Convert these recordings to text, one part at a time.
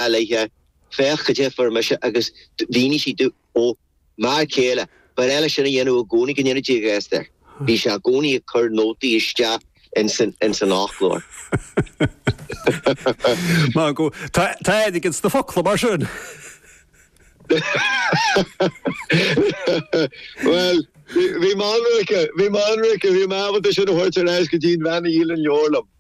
a leithéidí, féach cad é a fuair mise agus mhínigh sí domh, m'fhear céile ba bhreá leis sin a dhéanamh i gcónaí go ndéana Dia grásta air. Bhí sé i gcónaí ag cur nótaí isteach ins an fhoclóir. Margot, Tá airgead ins na focla mar sin? Bhuel, bhí mé ionraice, bhí mé ionraice, bhí mé ábalta sin a thabhairt ar ais go dtí an bhean a dhíol an leabhar liom.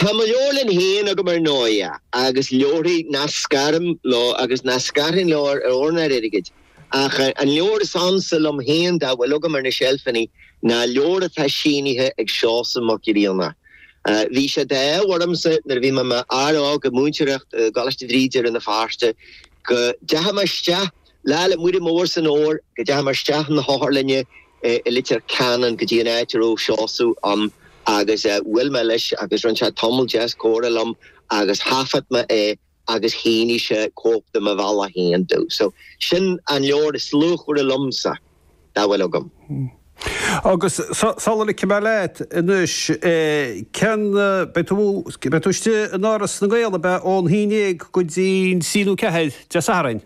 Tá mo leabharlann féin agam ar ndóighe, agus leabharthaí nach scaraim leo agus nach scarfainn leo ar ór ná ar airgead, ach an leabhar is ansa liom féin dá bhfuil agam ar na seilfeanna ná leabhar atá sínithe ag Seosamh Mac Grianna. Bhí sé d'ádh ormsa nuair a bhí mé i m'fhear óg ag múinteoireacht i gColáiste Bhríde i Rann na Feirste go dteachaigh mé isteach Lá Fhéile Muire Mór san Fhómhar, go dteachaigh mé isteach 'na hotharlainne i Leitir Ceanainn go dtí an áit a raibh Seosamh ann agus bhuail mé leis agus rinne sé tamall deas comhrá liom agus thaifead mé é agus shínigh sé cóip de Mo Bhealach Féin domh. So, sin an leabhar is luachmhaire liomsa dá bhfuil agam. Agus sula ligfidh mé leat anois, cén, beidh tú, beidh tú istigh in Áras na nGael, ab ea, ón haon dhéag go dtí'n trí nó ceathair Dé Sathairn?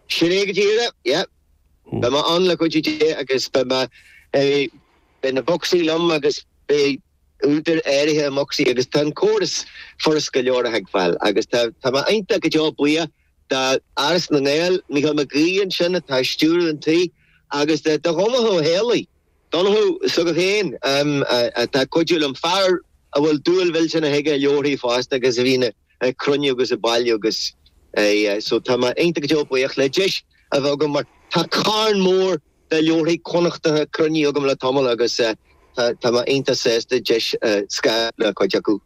Sin é go díreach, yep. Beidh mé ann le cuidiú Dé agus beidh mé, beidh na bocsaí liom agus beidh údair áirithe i mbocsaí agus tá an córas furast go leor a thuigbheáil agus tá, tá mé iontach go deo buíoch d'Áras na nGael, Mícheál Mac Aoidh ansin atá ag stiúradh an tí agus do Dhonncha Ó hÉallaithe. Donnchadh s'agat féin, atá ag cuidiú liom, fear a bhfuil dúil mhillteanach aige i leabharthaí fosta agus a bhíonn ag cruinniú agus ag bailiú agus so tá mé iontach go deo buíoch le deis a bheith agam mar tá carn mór de leabharthaí Connachtacha cruinnithe agam le tamall agus tá mé iontach sásta deis scaradh le cuid acu.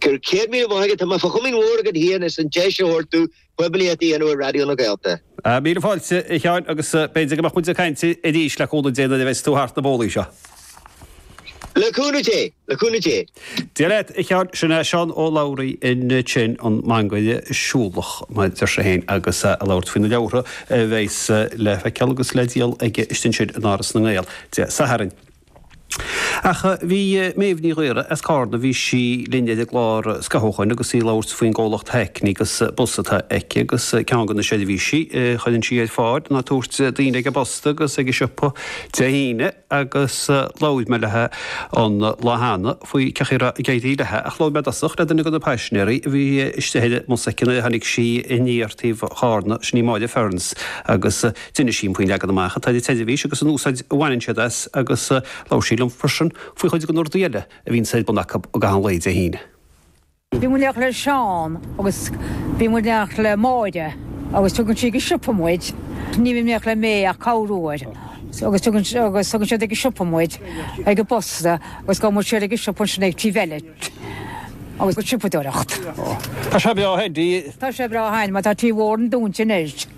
Go raibh céad maith agat, tá mé fá chomaoin mhór agat féin as an deis a thabhairt dom poiblíocht a dhéanamh ar Raidió na Gaeltachta. Míle fáilte, a Sheáin, agus b'fhéidir go mbeadh muid ag caint arís le cúnamh Dé nuair a bheas tú thart na bólaí seo. Le cúnamh Dé, le cúnamh Dé. Dia leat, a Sheáin, sin é Seán Ó Labhraí ansin, an mangaire siúlach, mar a deir sé féin, agus é ag labhairt faoi na leabhartha a bheas le feiceáil agus le díol aige istigh ansin in Áras na nGael, Dé Sathairn. Ach bhí Méabh Ní Ghaora as Carna, bhí sí linn ar an gclár scaitheamh ó shin agus í ag labhairt faoin gcomhlacht Hackney agus bus atá aici agus ceann de na seirbhísí a chuireann sí ar fáil ná tabhairt daoine ag an bposta agus ag an siopa Dé hAoine agus labhair mé léi an lá cheana faoi cén chaoi a raibh ag éirí léi ach labhair mé i dtosach le duine de na paisinéaraí a bhí istigh ar an mbus aici nuair a tháinig sí aniar taobh Charna, sin í Máire Ferns agus. D'inis sí faoin leagan amach atá ag an teileifís agus an úsáid a bhaineann siad as agus labhair sí liom freisin faoi chuid de na rudaí eile a bhíonn ar bun acu i gcaitheamh an lae Dé hAoine. Bhí muid ag amach le Seán agus bhí muid ag amach le Máire agus tugann sí ag an siopa muid, ní bhím ag amach le May ach corr uair, agus tugann siad ag an siopa muid, ag an bposta agus gabhann muid siar ag an siopa ansin ag Tí Bheilit agus siopadóireacht. Tá sé breá a'inn mar tá Tí Mhór an Dúin sin ar.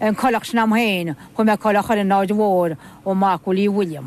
An coileach sin am fhéin chun mé coileach ar an Aird Mhóir ó Mac Willie William.